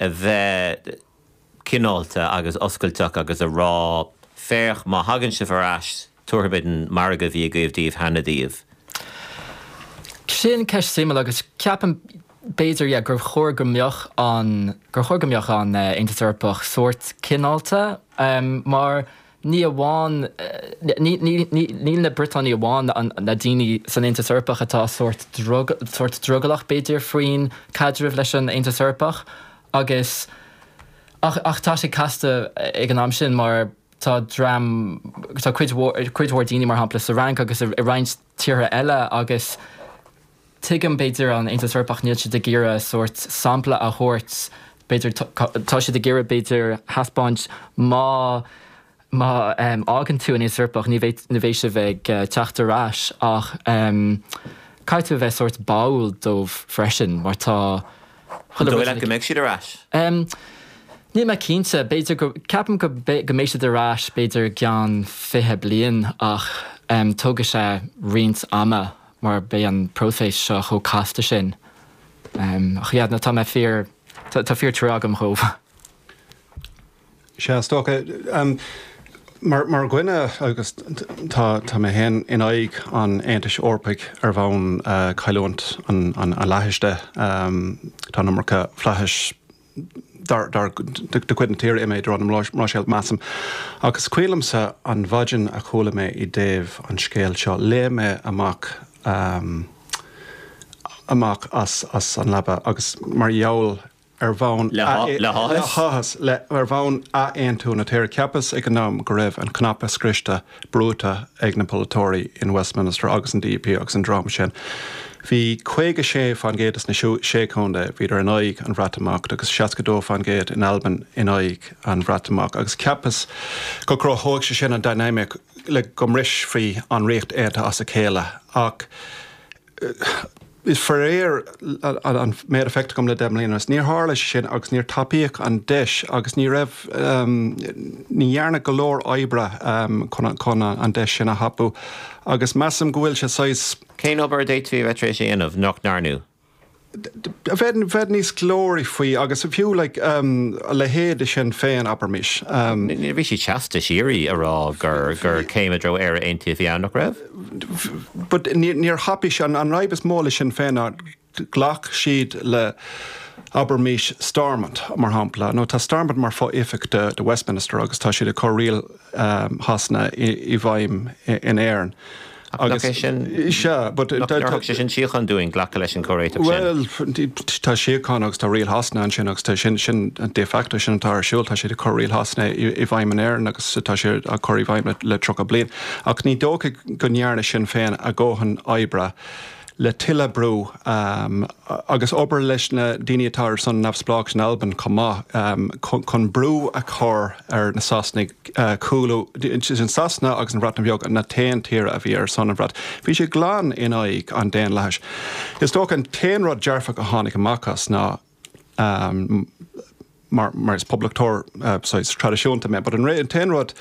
a bheith cineálta agus oscailteach agus a rá, féach, má thagann sibh ar ais, tabharfaimid an margadh a bhí agaibh daoibh cheana daoibh. Sin ceist suimiúil agus ceapaim, b'fhéidir, yeah gur chóir go mbeadh an, gur chóir go mbeadh an tAontas Eorpach sórt cineálta mar, ní amháin, níl na Briotanaigh amháin na daoine san Aontas Eorpach atá sórt sórt drogallach, b'fhéidir, faoin gcaidreamh leis an Aontas Eorpach agus ach ach tá sé casta ag an am sin mar tá dream tá cuid mhór cuid mhór daoine, mar shampla, sa Fhrainc agus i roinnt tíortha eile agus. Tuigim, b'fhéidir, an tAontas Eorpach, níl siad ag iarraidh sórt sampla a thabhairt, b'fhéidir, tá siad ag iarraidh, b'fhéidir, a thaispeáint má fhágann tú an tAontas Eorpach ní bheidh sibh ag teacht ar ais ach caithfidh tú a bheith sórt báúil dóibh freisin mar tá chuile rud ina. An dóigh leat go mbeidh siad ar ais? Níl mé cinnte, b'fhéidir go, ceapaim go mbeidh siad ar ais b'fhéidir i gceann fiche bliain ach tógfaidh sé roinnt ama. mar beidh an próiseas seo chomh casta sin. Ach ag an am céanna tá mé fíor tá fíor trua agam dóibh. Sea, is dócha. Mar dhuine agus tá tá mé féin in aghaidh an Aontais Eorpaigh ar bhonn cailliúint an fhlaithis. Tá an iomarca flaithis. de chuid na tíre imithe i dtreo na Bruiséile, measaim. Ach is cuimhin liomsa an mhaidin a chuala mé i dtaobh an scéil seo, léim mé amach, amach as an leaba agus mar gheall, ar bhonn. le háthas. le háthas, ar bhonn athaontú na tíre. Cheapas ag an am go raibh an cnaipe scriosta. brúite ag na polaiteoirí in Westminster agus an DUP agus an dream sin, bhí 56 fán gcéad de na Sé Chontae, bhíodar in aghaidh an Bhreatimeacht agus 62 fán gcéad in Albain in aghaidh an Bhreatimeacht agus cheapas go gcruthódh sé sin an dynamic le go mbrisfí an Ríocht Aontaithe as a chéile ach Is faraor ón méid a fheictear dom le deich mbliana anuas, níor tharla sé sin agus níor tapaíodh an deis agus ní raibh, ní dhearnadh go leor oibre chun an deis sin a thapú agus measaim go bhfuil sé saghas. Cén obair a d'fhéadfaí a bheith tar éis a dhéanamh nach ndearnadh? a bheith níos glóraí faoi agus fiú like a leithéid de Sinn Féin, abraimis. Bhí sí seasta síoraí a rá gur gur céim i dtreo Éire Aontaithe a bhí ann, nach raibh? but níor thapaigh sí, an fhadhb is mó le Sinn Féin ná ghlac siad le abraimis Stormont mar shampla nó tá Stormont mar fho-oifig de Westminster agus tá siad ag cur riail Shasana i bhfeidhm in Éirinn. Ach nach é sin, nach dtabharfadh sé sin síocháin dúinn, glacadh leis an gcomhréiteach sin? Bhuel, tá síocháin agus tá riail Shasana ansin agus tá sin de facto, sin atá ar siúl, tá siad ag cur riail Shasana i bhfeidhm in Éirinn agus tá sé á chur i bhfeidhm le tríocha bliain. Ach ní dócha go ndearna Sinn Féin a dhóthain oibre le tuilleadh brú agus obair leis na daoine atá ar son neamhspleáchas in Albain chomh maith chun brú a chur ar na Sasanaigh cúlú idir Sasana agus an Bhreatain Bheag, na t-aon tíortha a bhí ar son an Bhreatain. Bhí sé glan in aghaidh an daonlathais. Is dócha an t-aon rud dearfach a tháinig amach as ná. mar is poblachtóir saghas traidisiúnta mé, but an t-aon rud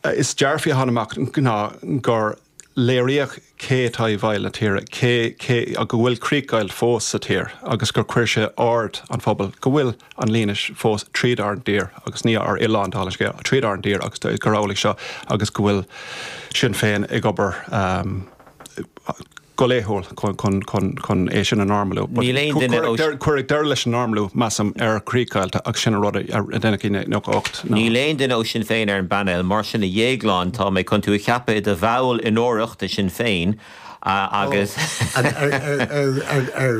is dearfaí a tháinig amach ná gur léiríodh cé atá i bhfeighil na tíre, cé, cé, go bhfuil críochdheighilt fós sa tír agus gur chuir sé aird an phobail go bhfuil an líne sin fós tríd ár dtír agus ní ár oileán, dála an scéil, tríd ár dtír agus gur amhlaidh seo agus go bhfuil Sinn Féin ag obair. go laethúil chun é sin a normalú. Níl aon duine ó. Cuireadh deireadh leis an normalú, measaim, ar chríochdheighilt agus sin an rud a deineadh i 1998. Níl aon duine ó Sinn Féin ar an bpainéal, mar sin a Dhéagláin tá mé chun tú a cheapadh i do bhall onórach de Shinn Féin agus. Ar